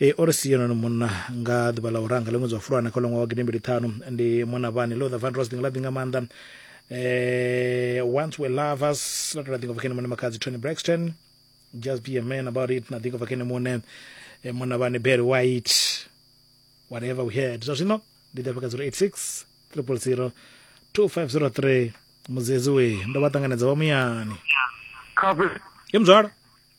E, o ri si yone munna nga ḓuvha ḽa u ranga ḽe ṅwedzi wa fulwana kha ḽoṅwa wa gidimbili ṱhanu ndi mona vhani lo the van rose ḓinga ḽa ḓinga maanḓa eh, once we lovers ḽa tou ḽa ḓinga vhakene mone makadzi tony braxton just be a man about it na ḓinga vhakene mone eh, mona vhani berry white whatever we had zwa zwino ndi ḓafha kha 086 000 2503 mudzedzi we ndo vha ṱanganedza vha muyani Khabe. ye muzwala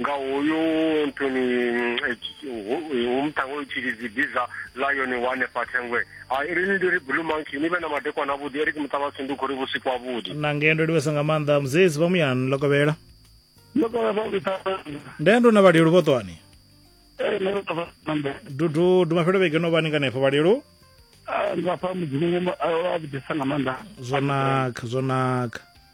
nga hoyu nthuni umtango utshilidzi biza lion wa hanefha thengwe rini ndi ri blue monkey ni vhe na madekwana avhuḓi eric muṱavhasi ndi khou ri vhusiku avhuḓi na ngei ndo livhesa nga maanḓa muzezi vha muyani ḽo kovhela nde ndo na vhalelu vho ṱwani dudu dumafhelo vhege no vhani kanefho vhalelu ngafha mudzimu a vhudisa nga maanḓa zwo naka zwo naka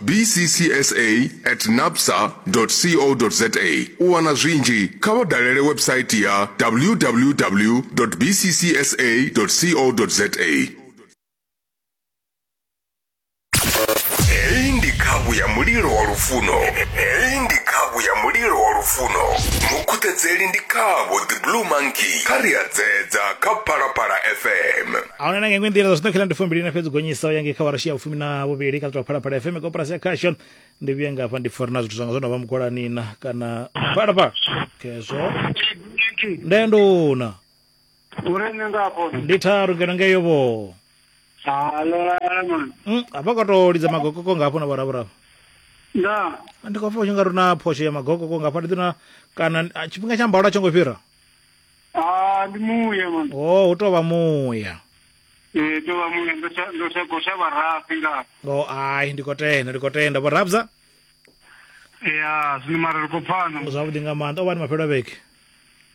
bccsa at napsa co za u wana zwinzhi kha vha dalele website ya www bccsa co za heyi ndi khavhu ya mulilo wa lufuno heyi ndi khavhu ya mulilo wa lufuno mukhuthedzeli ndi khavho the blue monkey kha ri a dzedza kha phalaphala fm ahuna na nga iṅwe nḓila zwino khela ndi fumbili na fhedzi gonyisa u ya ngei kha warashi ya vhufumi na vhuvhili kha ḽitwa phalaphala fm koporasi ya khashon ndi vhuye ngafha ndi pfori na zwithu zwanga zwo no vha mugolanina kana phalaphala khezwo nde nduna uri nṋe nga afho ndi tharu ngeno ngeyo vho halolala mani Mm, hafha ka to lidza magokoko ngafho na vhoravhurava nda ndi khou pfa u tshi nga ri na phosho ya magokoko ngafha ndi ḓina kana ah, tshifhinga tsha mbalo a tsho ngo fhira Ah, ndi muya man. o hu tovha muya Eh, to vha muya ndo sa ndo sa gosha vharafi nga. o ai ndi khou tenda ndi khou tenda vho rabza Ya, zwino mara ri khou pfana. zwavhuḓi nga maanḓa o vha ni mafhelo a vhege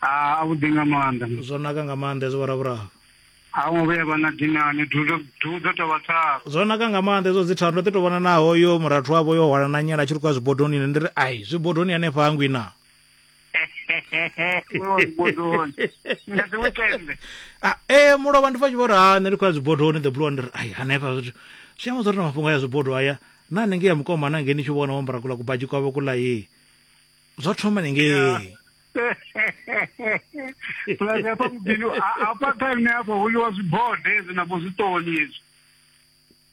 Ah, a vhu dinga maanḓa. zwo naka nga maanḓa hezwo vhoravhuraru A ngo vhuya vha na dinani, dudo dudo to vha tharu. zwo naka nga maanḓa hezwo dzi tharu ndo ḓi to vhona naho yo murathu wavho yo hwala na nyala a tshi ri khou ya zwibodoni ine ndi ri ai zwibodoni hanefha hangwi na ah, ee eh, mulovha ndi fa tshi vho ri ha nṋe ndi khou ya zwibodoni the blue ndi ri ai hanefha zwithu zwi amba zwo ri na mafhungo a ya zwibodo aya na nenge ya mukoma na ngeni tshi vhona wambara kula kubaji kwavho kula ye zwa thoma nenge plus hafha mudini hafha kha nṋe hafha hu ḽiwa zwibode hezwi navho zwiṱoni hezwi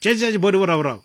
tshetsha tshibode vhoravhuravo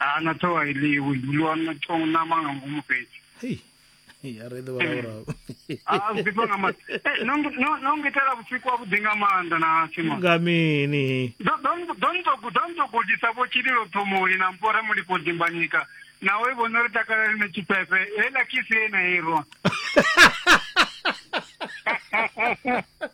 a na thoa ili u dzuliwa na tong na manga ngomu fhethu hei hei a re ḓe vhalaurau a u ḓifha nga maanḓa Eh, no ngi- no- no ngitela vhusiku havhuḓi nga maanḓa na simon nga mini donto gudisa vho tshililo ṱhomoli na mpora mulipo dimbanyika nawe vhono ri takala ri na tshifhefe heiḽa kisi ye na irwa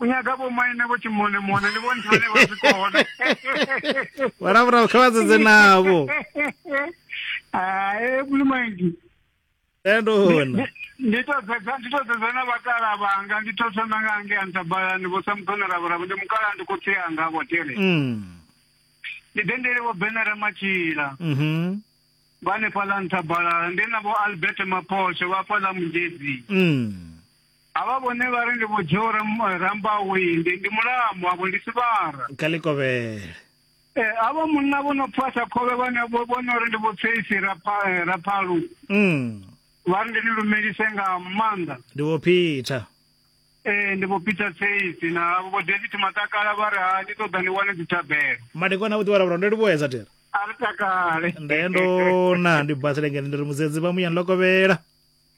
u nyaga vho maine vho tshimone mone ndi vhone vhane vha zwi kona vharavhurau kha vha dzedze navho hai mulimaingi endona ndi to dzedza ndi to dzedza na vhakala vhanga ndi to thoma nga nge antabalani vho samukona ravhuravo ndi mukala ndi khotsi anga vho tere mm. ndi dendele vho benara matshila mhm vha hanefhaḽa nṱhabalala ndi na vho albert maphosho vha hafhaḽa mugedzi mm. Havha vhone vha ri ndi vho Joe Rambawi, ndi ndi Mulamu, avho ndi Sivhara. Kha Likovhele. Eh, havha munna vho no pfasa khovhe vhane vho vhona uri ndi vho Tsheisi eh, Raphalu. Mm. Vha ri ndi ni lumelise nga maanḓa. Ndi vho Peter. Eh, ndi vho Peter Tsheisi na vho David Matakala vha ri ha ndi ṱoḓa ni wane dzithabelo. Madekwana vho ḓi vhala ndo ndi vho edza tera. A ri takale. Ndendona ndi bathele ngene ndi ri mudzedzi vha muya nlokovhela.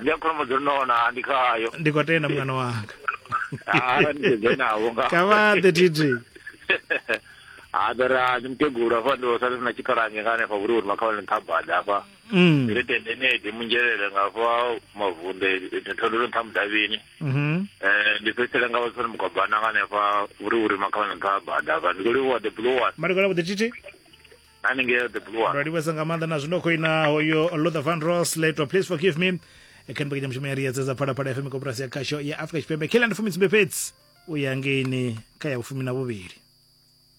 ndi a kholomo dzo nona ndi khayo ndi khou tenda mwana wanga Ah, ndi sedze navho nga kha vha ḓe titi ha ḓora ndi mukegulu hafha ndi sale sina tshikhalange nga hanefha vhuri uri makhawane nthabada hafha Mm. ndi tende nedi munzhelele nga hafha mavunde thondolo nṱha mudavhini Mhm. Eh, ndi fhedzisela nga vhatsoni mugwabana nga hanefha vhuri uri makhawane nthabada hafha ndi khou livhuwa the blue one Madokotela vhuḓi titi haningei the blue one ndo livhesa nga maanḓa na zwino khoina hoyo luther van ros leto please forgive me kha mbekanya mushumo ya riyedza dza phalaphala fm koporasi ya khasho ya afrika tshipembe kila ndi fumi tsumbe fhedzi u ya ngeini kha ya vhufumi na vhuvhili